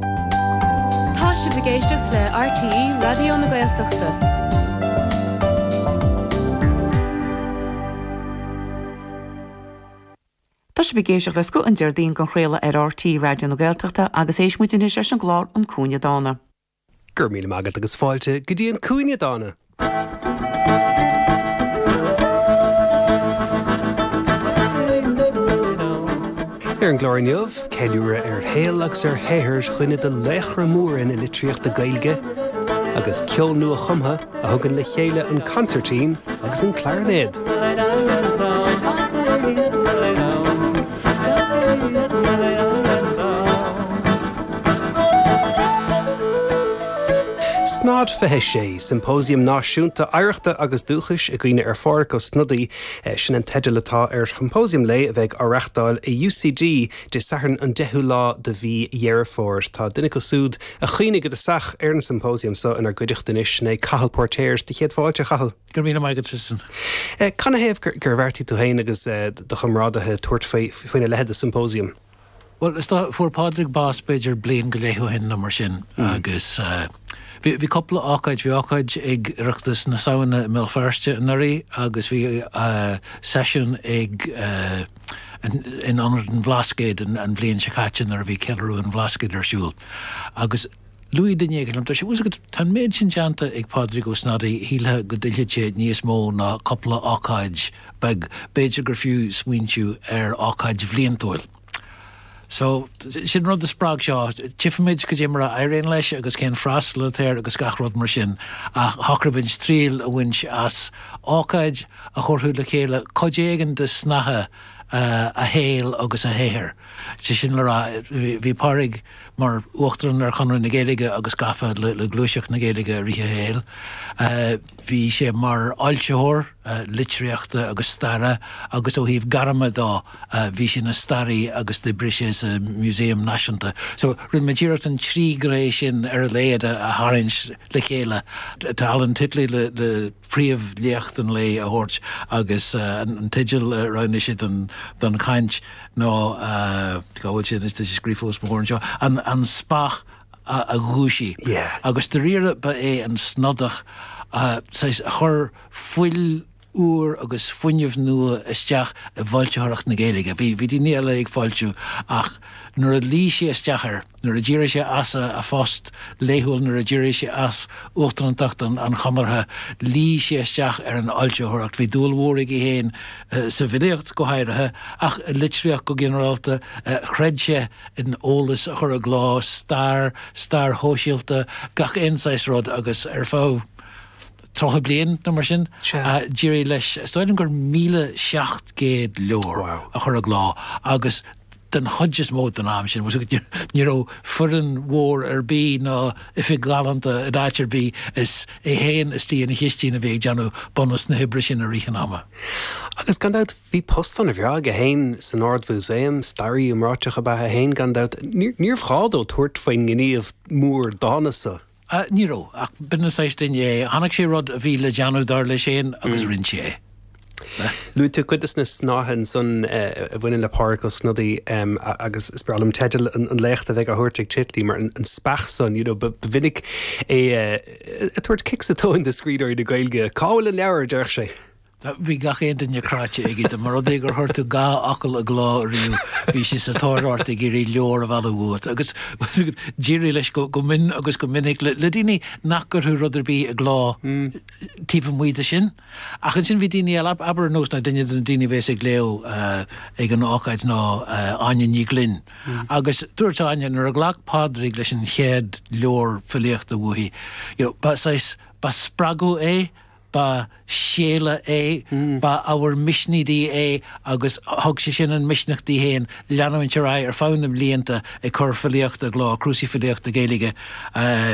Tá sibh ag éisteacht le RTÉ Raidió na Gaeltachta. Tá sibh ag éisteacht le Scoth an Déardaoin á chraoladh ar RTÉ Raidió na Gaeltachta agus éistfimid anois leis an gclár An Cúinne Dána. Go raibh míle maith agat agus fáilte go dtí An Cúinne Dána! Ar an gclár inniu, ceiliúradh ar shaol agus ar shaothar dhuine de laochra móra na litríochta Gaeilge, agus ceol nua-chumtha a thugann le chéile an consairtín agus an clairinéad. Snod 26, Symposium Náisiúnta Oidhreachta agus Dúchais i gcuimhne ar Phádhraic Ó Snodaigh, sin an teideal atá ar shiompósiam lae a bheidh á reachtáil i UCD Dé Sathairn an 10ú lá de mhí Dheireadh Fómhair. Tá duine acu súd a chuimhnigh i dtosach ar an symposium so inár gcuideachta anois, ná Cathal Póirtéir. Do chéad fáilte, a Chathail. Go raibh míle maith agat, Tristan. Canathaobh gur bheartaigh tú féin agus do chomrádaithe tabhairt faoina leithéid de symposium? Bhuel, is dócha, fuair Pádraig bás b'fhéidir bliain go leith ó shin nó mar sin agus bhí cúpla ócáid, bhí ócáid ag Oireachtas na Samhna i mBéal Feirste anuraidh agus bhí seisiún ag in ionad an Bhlascaoid an bhliain seo caite nuair a bhí Ceiliúradh an Bhlascaoid ar siúl agus Luaigh duine éigin liom, tá a fhios agat, tá an méid sin déanta ag Pádraig Ó Snodaigh, shílfeá go dtuillfeadh sé níos mó ná cúpla ócáid beag, b'fhéidir gur fiú smaointiú ar ócáid bhliantúil. So, sin an rud a spreag seo, tchifimid cad é mar a éiríonn leis agus cén freastal atá air agus gach rud mar sin, ach shocraigh muid triail a bhaint as ócáid a thabharfadh le chéile cuid éigin de shnáithe a shaoil agus a shaothair. Sé sin le rá, bhí Pádraig. mar uachtarán ar Chonradh na Gaeilge agus gafa le gluaiseacht na Gaeilge i rith a shaoil. Bhí sé mar fhoilsitheoir litríochta agus staire agus ó thaobh gairme dó bhí sé ina staraí agus d'oibrigh sé sa Museum Náisiúnta. So rinne muid iarracht an trí ghné sin ar a laghad a tharraingt le chéile. Tá Alan Titley le. príomhléacht an lae a thabhairt agus an teideal a roghnaigh sé don chaint ná, cá bhfuil sé anois, tá sé scríofa os mo chomhair anseo, An Speach a Dhúisigh. Agus dáiríre ba é an Snodach a chuir fuil úr agus fuinneamh nua isteach i bhfoilsitheoireacht na Gaeilge. Bhí daoine eile ag foilsiú ach nuair a luigh sé isteach air, nuair a d'éirigh sé as a phost laethúil, nuair a d'éirigh sé as uachtarántacht an Chonartha, luigh sé isteach ar an fhoilsitheoireacht. Bhí dúil mhór aige féin sa bhfilíocht, go háirithe, ach i litríocht go ginearálta. Chreid sé in eolas a chur i gcló, stair, stair shóisialta, gach aon saghas rud, agus ar feadh tríocha bliain nó mar sin, d'éirigh leis, is dóigh liom gur míle seacht gcéad leabhar a chur i gcló, agus. den chuid is mó den am sin, ní raibh foireann mhór ar bith ná oifig ghalánta in áit ar bith, is é féin istigh ina chistín a bhí ag déanamh bunús na hoibre sin i rith an ama. Agus gan dabht, bhí post ana bhreá aige féin san Ard-Mhúsaem, staraí iomráiteach ab ea é féin, gan dabht, níorbh ghá dó tabhairt faoin ngníomh mór dána san. Ní raibh. Ach b'in an saghas duine é. Chonaic sé rud a bhí le déanamh, dar leis féin, agus rinne sé é. Luaigh tú cuid de na snáithe ansan a bhaineann le Pádraig Ó Snodaigh agus is breá liom teideal an léachta a bheidh á thabhairt ag Titley mar An Speach San, you know, ba mhinic é ag tabhairt cic sa tóin do scríbhneoirí na Gaeilge. Cá bhfuil an leabhar, a déarfadh sé. Bhí gach aon duine cráite aige de. Má thuig sé gur chuir tú dhá fhocal i gcló ariamh, bhí sé sa tóir ort ag iarraidh leabhar a mhealladh uait. Agus d'éirigh leis go mion agus go minic le daoine nach gcuirfeadh rud ar bith i gcló taobh amuigh de sin. Ach ansin bhí daoine eile, abair ar nós duine de na daoine a bheas ag léamh ag an ócáid ná Áine Ní Ghlinn. Agus dúirt Áine nuair a ghlac Pádraig leis an chéad leabhar filíochta uaithi, ba shaghas, ba spreagadh é, ba séala é, ba ábhar misnigh di é agus thug sé sin an misneach di féin leanúint ar aghaidh ar feadh na mblianta ag cur filíochta i gcló, cnuasaigh filíochta Gaeilge.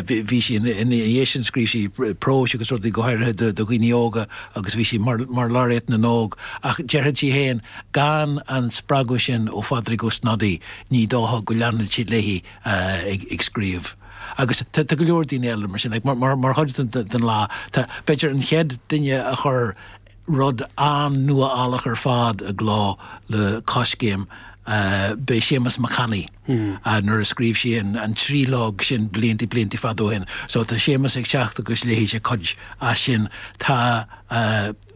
Bhí sí, ina dhiaidh sin scríobh sí próis agus rudaí go háirithe do dhaoine óga agus bhí sí mar Laureate na nÓg ach déarfadh sí féin gan an spreagadh sin ó Phádraig Ó Snodaigh ní dócha go leanfadh sí léi ag scríobh. Agus tá go leor daoine eile mar sin. Mar chuid den lá, tá, b'fhéidir, an chéad duine a chuir rud an-nuálach ar fad i gcló le Coiscéim, beidh Séamas Mac Annaidh, nuair a scríobh sé an tríológ sin blianta, blianta fada ó shin. So, tá Séamas ag teacht agus léifidh sé cuid as sin. Tá.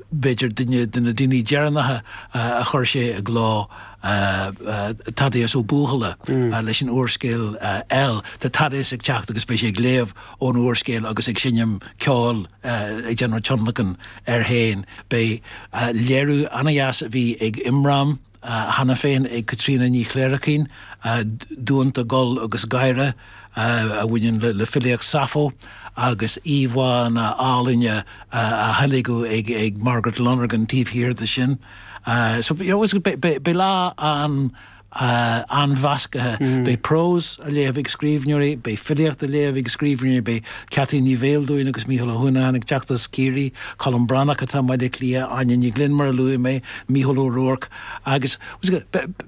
b'fhéidir duine de na daoine deireanacha a chuir sé i gcló, Thaddeus Ó Buachalla leis an úrscéal El. Tá Thaddeus ag teacht agus beidh sé ag léamh ón úrscéal agus ag seinm ceoil, ag déanamh tionlacan air féin. Beidh léiriú an-deas a bhí ag Imram. cheana féin ag Caitríona Ní Chléirchín, Dánta, Gol agus Gáire, a bhaineann le filíocht Sappho, agus íomhánna áille á dteilgean ag Margaret Lonergan taobh thiar de sin. So beidh lá an-mheascaithe. Beidh prós á léamh ag scríbhneoirí, beidh filíocht á léamh ag scríbhneoirí, beidh Ceaití Ní Bheildiúin agus Micheál Ó hUanacháin ag teacht as Ciarraí, Colm Breathnach atá i mBaile Átha Cliath, Áine Ní Ghlinn mar a luaigh mé, Mícheál Ó Ruairc agus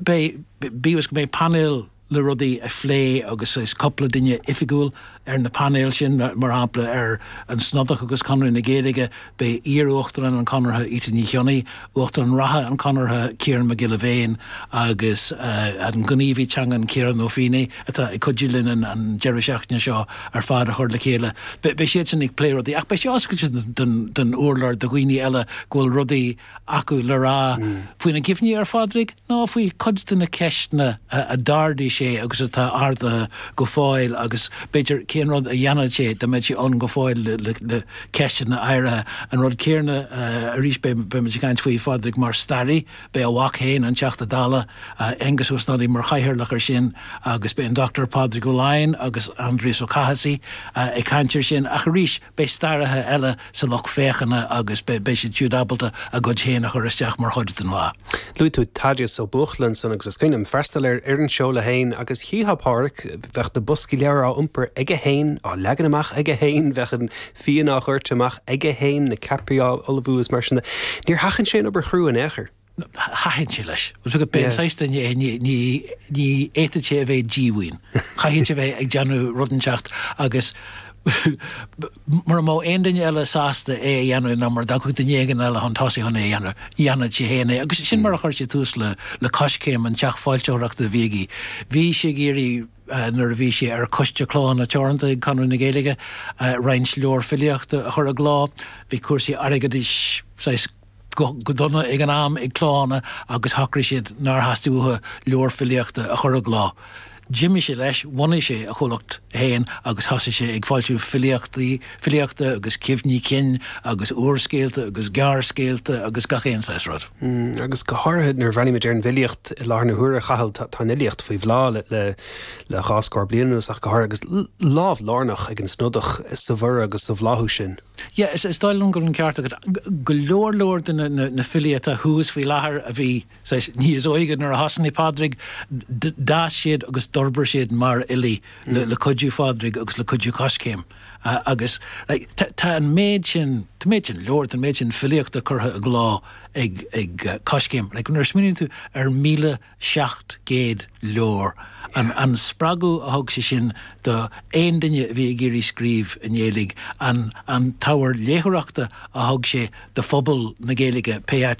beidh, bíodh is go mbeidh painéal le rudaí a phlé agus cúpla duine oifigiúil ar na painéil sin, mar shampla ar an Snodach agus Conradh na Gaeilge, Beidh iar-Uachtarán an Chonartha, Íte Ní Chionnaith, Uachtarán reatha an Chonartha, Ciarán Mac Giolla Bhéin, agus an gníomhaí teangan Ciarán Ó Feinneadha atá ag cuidiú linn an deireadh seachtaine seo ar fad a chur le chéile. Beidh siadsan ag plé rudaí ach beidh sé oscailte don urlár do dhaoine eile go bhfuil rudaí acu le rá faoina gcuimhní ar Phádraig nó faoi chuid de na ceisteanna a d'ardaigh sé agus atá ardaithe go fóill agus, b'fhéidir, cén rud a dhéanfadh sé dá mbeadh sé ann go fóill le ceisteanna áirithe. An rud céanna arís, beimid ag caint faoi Phádraig mar staraí, beidh a mhac féin, an Teachta Dála, Aengus Ó Snodaigh mar chathaoirleach air sin agus beidh an Dr Pádraig Ó Laighin agus Aindrias Ó Cathasaigh ag caint air sin ach arís, Beidh staraithe eile sa lucht féachana agus beidh siad siúd ábalta a gcuid féin a chur isteach mar chuid den lá. Luaigh tú Tadaeus Ó Buachalla ansan agus is cuimhin liom freastal ar an seoladh féin agus chífeá Pádraig, bheadh na boscaí leabhar á iompar aige féin, á leagan amach aige féin, bheadh an fíon á dhoirteadh amach aige féin, na ceapairí á ullmhú is mar sin de. Níor sheachain sé an obair chrua in aon chor. Thaitin sé leis. B'é an saghas duine é, ní fhéadfadh sé a bheith díomhaoin. Chaithfeadh sé a bheith ag déanamh rud inteacht agus mura mbeadh aon duine eile sásta é a dhéanamh nó mura dtiocfadh duine éigin eile chun tosaigh chun é a dhéanamh, dhéanfadh sé féin é. Agus sin mar a chuir sé tús le Coiscéim, an teach foilsitheoireachta a bhí aige. Bhí sé ag iarraidh, nuair a bhí sé ar Choiste Clódhanna Teoranta ag Conradh na Gaeilge, roinnt leabhar filíochta a chur i gcló. Bhí cúrsaí airgeadais saghas go dona ag an am ag Clódhanna agus shocraigh siad nár theastaigh uathu leabhar filíochta a chur i gcló. D'imigh sé leis, bhunaigh sé a chomhlacht féin agus thosaigh sé ag foilsiú filíochtaí, filíochta agus cuimhní cinn agus úrscéalta agus gearrscéalta agus gach aon saghas rud. Agus go háirithe nuair a bhreathnaímid ar an bhfilíocht i láthair na huaire, a Chathail, tá an fhilíocht faoi bhláth le dhá scór bliain anuas ach go háirithe agus lámh lárnach ag an Snodach sa bhorradh agus sa bhláthú sin. Yeah, is dóigh liom go bhfuil an ceart agat. Go leor, leor de na filí atá thuas faoi láthair a bhí, saghas, níos óige nuair a thosnaigh Pádraig, d'fhás siad agus d'fhorbair siad mar fhilí le cuidiú Phádraig agus le cuidiú Coiscéim. Agus, like, tá an méid sin, tá an méid sin leabhar, tá an méid sin filíochta curtha i gcló ag Coiscéim. Like, nuair a smaoiníonn tú ar 1,000. 700 leabhar. An spreagadh a thug sé sin do aon duine a bhí ag iarraidh scríobh i nGaeilge, an t-ábhar léitheoireachta a thug sé do phobal na Gaeilge, pé áit